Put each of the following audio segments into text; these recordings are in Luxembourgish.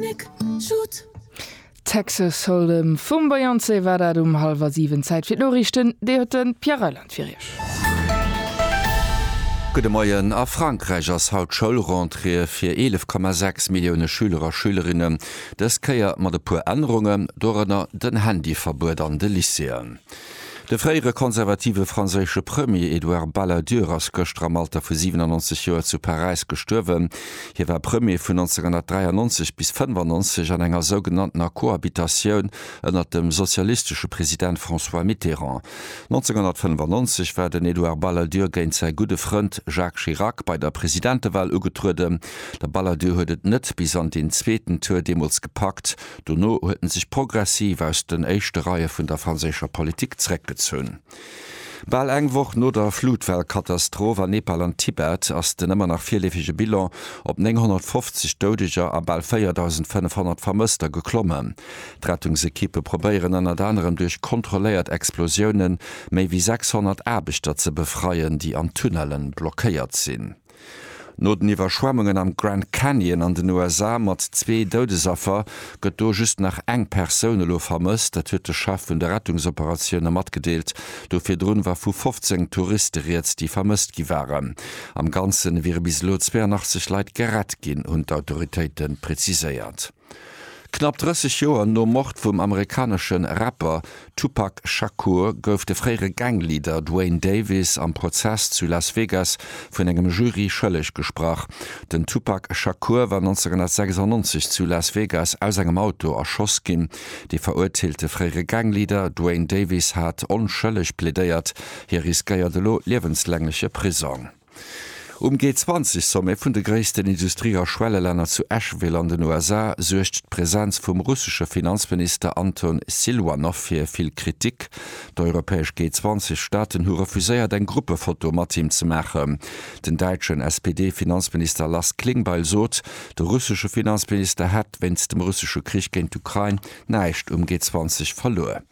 Nick, Jude. Texas Hold'em vum Beyoncé war dat um hallwer 7. Zäit fir d'Noriichten, déi huet de Pierre Reyland fir Iech. Gudde Moien. A Frankräich ass haut Schoulrentrée fir 11,6 Millioune Schüler a Schülerinnen, dës Kéier mat e puer Ännerungen, dorënner den Handyverbuet an de Lycéeën. De fréiere konservative franséische Premier Edouard Balladur ass gëschter am Alter vu 97 Joer zu Paräis gestuerwen. Hie war Premier vun 1993 bis 1995 an enger sougenanntener Cohabitatioun ënnert dem sozialistesche President François Mitterrand. 1995 war den Edouard Balladur géint säi gudde Frënd Jacques Chirac bei der Presidentewal ugetrueden. De Balladur huet et net bis an deen zweeten Tour deemools gepackt, Dono huet en sech progressiv aus den éischte Reie vun der franséischer Politik zeréckgezunn. Bal eng Woch no der Flutwell-Katastroph an Nepal an Tibet ass den ëmmer nach virleefege Bilan op 950 Doudeger a bal 4.500 Vermësster geklommen. D'Rettungsekippe probéieren ënnert anerem duerch kontrolléiert Explosiounen méi wéi 600 Aarbechter ze befreien, déi an Tunnellen blockéiert sinn. No den Iwwerschwemmungen am Grand Canyon an den USA mat zwee Doudesaffer, gëtt do just nach eng Persoun elo vermësst. Dat huet de Chef vun de Rettungsoperatioune matgedeelt. Do virdrun war vu 15 Touriste rieds, déi vermësst gi waren. Am Ganze wiere bis elo 82 Leit gerett ginn, hunn d'Autoritéite preziséiert. Knapp 30 Joer nom Mord vum amerikanesche Rapper Tupac Shakur gouf de fréiere Gang-Leader Duane Davis am Prozess zu Las Vegas vun engem Jury schëlleg gesprach. Den Tupac Shakur war 1996 zu Las Vegas aus engem Auto erschoss ginn. De verurteelte fréiere Gang-Leader Duane Davis hat onschëlleg plädéiert. Hie riskéiert elo liewenslängleche Prisong. Um G20-Sommet vun de gréissten Industrie a Schwellelänner zu Asheville an den USA suergt d'Presenz vum russesche Finanzminister Anton Silwanow fir vill Kritik. D'europäesch G20-Staaten hu refuséiert eng Gruppefoto mat him ze maachen. Den däitschen SPD-Finanzminister Lars Klingbeil sot, de russesche Finanzminister hätt wéinst dem russesche Krich géint d'Ukrain näischt um G20 verluer.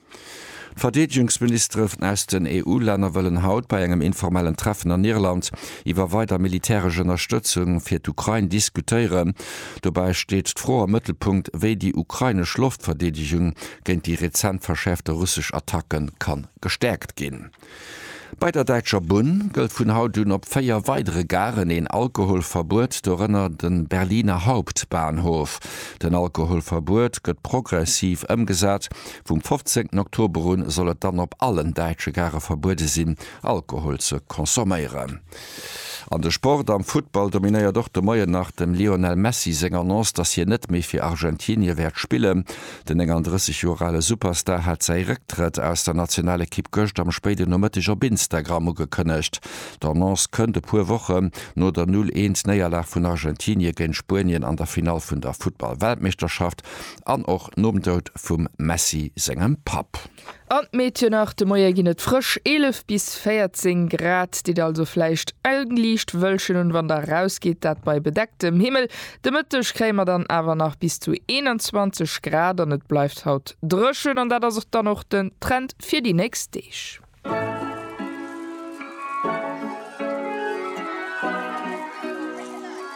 D'Verdeedegungsministeren aus den EU-Länner wëllen haut bei engem informellen Treffen an Irland iwwer weider militäresch Ënnerstëtzung fir d'Ukrain diskutéieren. Dobäi steet d'Fro am Mëttelpunkt, wéi déi ukrainesch Loftverdeedegung géint déi rezent verschäerfte russesch Attacke ka gestäerkt ginn. Bei der Däitscher Bunn gëllt vun haut un op 4 weidere Garen een Alkoholverbuet, dorënner de Berliner Hauptbahnhof. Den Alkoholverbuet gëtt progressiv ëmgesat, vum 15 Oktober un soll et dann op allen däitsche Gare verbuede sinn, Alkohol ze consomméieren. An de Sport, Am Futtball dominéiert och de Moien nach dem Lionel Messi seng Annonce, dass hien net méi fir Argentinie wäert spillen. Den 39 Joer ale Superstar hat säi Récktrëtt aus der Nationalekipp gëscht am spéiden Nomëtteg op Instagram ugekënnegt. D'Annonce kënnt e puer Wochen no der 0 Eent Néierlag vun Argentinie géint Spuenien an der Finall vun der Futtball-Weltmeeschterschaft an och nom Doud vum Messi sengem Papp. An d'Meedchen nach, de Moie ginn et frësch 11 bis 14 Grad. Ditt also vläicht eng liicht Wëllchen un, wann der eraus gitt, dat bei bedecktem Himmel. De Mëtteg kréie mer dann awer nach bis zu 21 Grad an et bleift haut dréchen. An dat ass och dann och den Trend fir déi nächst Deeg.